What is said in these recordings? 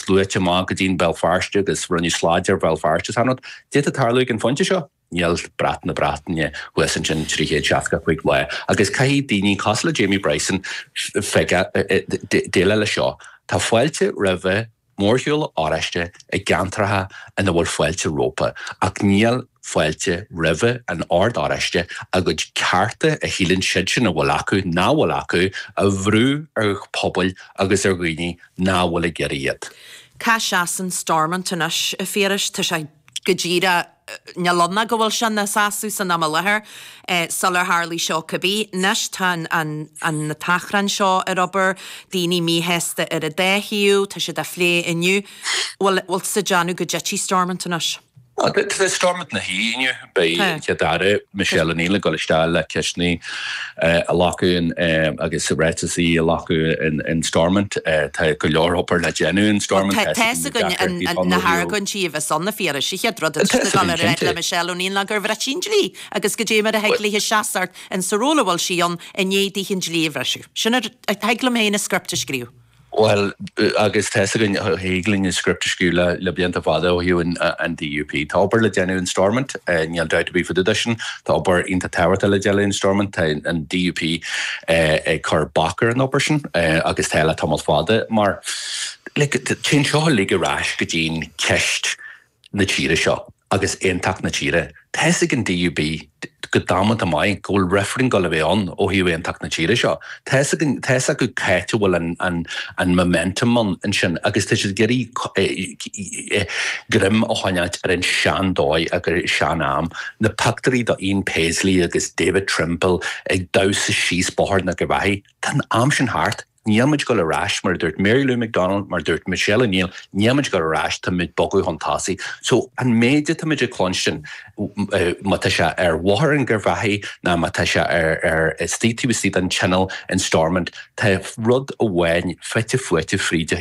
Sluaite amach go dtí Béal Feirste agus rinneadh slad ar Bhéal Feirste sin rud a d'fhéadfadh tarlú ag an phointe seo. Níl brat na Breataine thuas ansin 365 lá agus caithfidh daoine cosúil le Jamie Bryson déileáil leis seo. Tá fáilte roimhe mórshiúl oráiste i gceantracha ina bhfuil fáilte rompu ach níl. fáilte roimhe an Ord Oráiste a gcuid cearta, a shíleann siadsean a bhfuil acu nach bhfuil acu, a bhrú ar phobail agus ar dhaoine nach bhfuil ag iarraidh iad. Cá seasann Stormont anois, a Phiarais? Tá sé go díreach, níl ann ach go bhfuil sé ina sheasamh san am i láthair, sular tharlaigh seo cibé. Anois tá an t-achrann seo ar obair, daoine míshásta ar an dá thaobh, tá siad á phlé inniu, bhfuil siad ag déanamh go dtitfidh Stormont anois? Tá Stormont ina shuí inniu. Beidh an Chéad-Aire Michelle O'Neill ag dul isteach le ceisteanna a ghlacadh agus ráiteasaí a ghlacadh in Stormont. Tá go leor obair le déanamh in Stormont. Tá a fhios againn na hargóintí a bheas ann, na fíorais, chéad rud, a déarfar le Michelle O'Neill ná gur bhris sí an dlí agus goidé mar a thig léi seasamh ins an ról a bhfuil sí ann i ndiaidh di an dlí a bhriseadh. Sin, thig liom féin an script a scríobh. Bhuel, agus tá's againn, thig linn an script a scríobh le blianta fada ó thaobh an DUP. Tá obair le déanamh in Stormont, níl dabht ar bith fá dtaobh de sin, tá obair iontach tábhachtach le déanamh in Stormont, tá an DUP ag cur bac ar an obair sin agus tá le tamall fada mar, like, téann seo uilig ar ais go dtí an cheist na tíre seo agus aontacht na tíre. Tá's ag an DUP go damanta maith go bhfuil reifreann ag dul a bheith ann ó thaobh aontacht na tíre seo. Tá's acu cáit a bhfuil an momentum ansin agus tá siad ag iarraidh greim a choinneáilt ar an sean-dóigh agus an sean-am, na pioctúirí do Ian Paisley agus David Trimble ag damhsa síos Bóthar an Gharbhachaidh, tá an am sin thart. Níl muid ag dul ar ais, mar a dúirt Mary Lou McDonald, mar a dúirt Michelle O'Neill, níl muid ag dul ar ais, tá muid ag bogadh chun tosaigh. So, an méid atá muid ag cluinstin, má tá sé ar Bhóthar an Gharbhachaidh ná má tá sé ar istigh taobh istigh den Tionól in Stormont, tá rud amháin fite fuaite fríd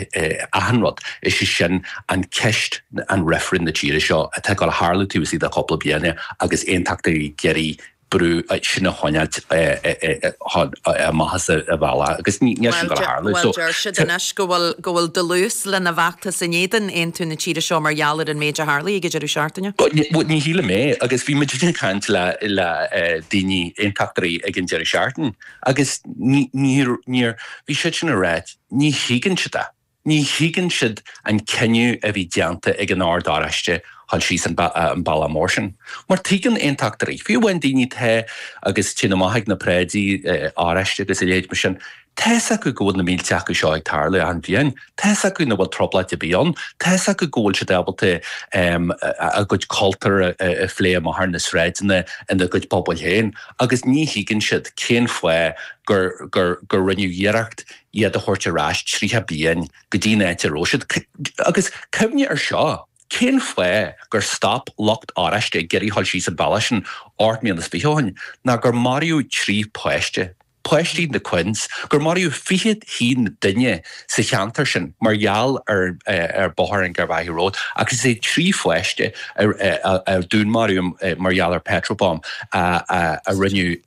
achan rud, is é sin an ceist an reifrinn na tíre seo atá ag dul a tharlú taobh istigh de chúpla bliana agus aontachtaithe ag iarraidh brú sin a choinneáilt amach as an bhealach agus níl sin ag dul a tharlú. Bhuel, deir siad anois go bhfuil dlús lena bhfeachtas in éadan aontú na tíre seo mar gheall ar an méid a tharlaigh ag an deireadh seachtaine. Bhuel, ní shílim é agus bhí muid ag caint le daoine, aontachtóirí ag an deireadh seachtaine agus bhí siadsan ag rá, ní thuigeann siad é. Ní thuigeann siad an cinneadh a bhí déanta ag an Ord Oráiste dhul síos an bealach mór sin. Mar tuigeann Aontachtóirí, fiú amháin daoine atá ag gabháil amach ag na paráidí Oráiste agus a leithéid mar sin, tá fhios acu go bhfuil na mílte acu seo ag tarlú achan bliain, tá fhios acu nach bhfuil trioblóid ar bith ann, tá fhios acu go bhfuil siad ábalta a gcuid cultúir a phlé amach ar na sráideanna ina gcuid pobail féin agus ní thuigeann siad cén fáth gur rinneadh iarracht iad a thabhairt ar ais tríocha bliain go dtí'n áit a rabh siad. Agus cuimhnigh air seo, cén fáth gur stop lucht Oráiste ag iarraidh dhul síos an bealach sin ocht mbliana is fiche ó shin, ná gur maraíodh trí páiste, páistí na Quinns, gur maraíodh fiche haon duine sa cheantar sin mar gheall ar Bóthar an Garvaghy Road agus is é trí pháiste a dúnmaraíodh mar gheall ar petrol bomb a rinneadh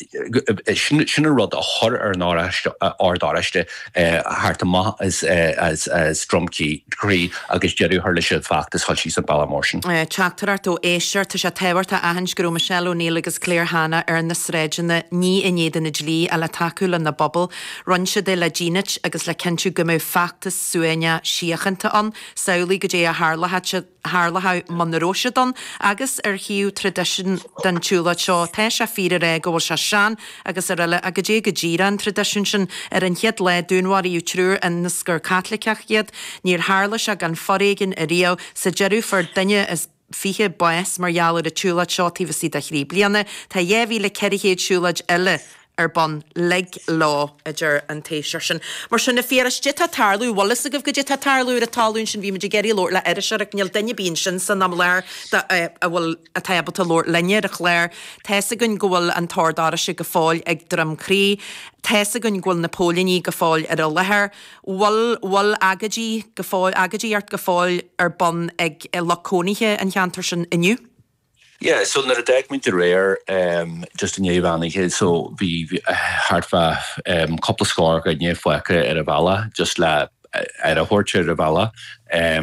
Sin an rud a chuir ar an Ord Oráiste tarraingt amach as Droim Crí agus deireadh a chur leis an bhfeachtas dhul síos an bealach mór sin. Teachtaireacht ó éisteoir, tá sé tábhachtach a aithint go raibh Michelle O'Neill agus Claire Hanna ar na sráideanna arú inné agus inné le tacú lena bpobal. Rinne siad é le dínit agus le cinntiú go mbeadh feachtas suaimhneach síochánta ann, samhlaigh goidé a tharlódh. tharlódh muna raibh siad ann, agus ar thaobh traidisiún den tsiúlóid seo. Tá sé fíor a rá go bhfuil sé sean agus araile, ach goidé go díreach an traidisiún sin. Ar an chéad lá, dúnmharaíodh triúr ionas gur Caitlicigh iad. Níor tharla sé gan foréigean ariamh. Sa deireadh, fuair duine is fiche bás mar gheall ar an tsiúlóid seo taobh istigh de thrí bliana. Tá 2,400 siúlóid eile. ar bun. Lig leo, a deir an t-éisteoir sin. Mar sin, a Fhiachra, goidé atá ag tarlú. Bhfuil fhios agaibh goidé atá ag tarlú? Ar an talún sin, bhí muid ag iarraidh labhairt le hOráisteach, ach níl duine ar bith ansin san am i láthair, bhuel, atá ábalta labhairt linne ar an chlár, tá fhios againn go bhfuil an tOrd Oráisteach go fóill ag Droim Crí. Tá fhios againn go bhfuil na póilíní go fóill ar an láthair. Bhfuil, bhfuil agóidí go fóill, agóidíocht go fóill ar bun ag lucht cónaithe an cheantair sin inniu? Yeah, so nuair a d'fhág muid aréir, just i ndiaidh an mheán oíche, so bhí thart fá cúpla scór duine fágtha ar an bhealach, just le aire a thabhairt ar an bhealach.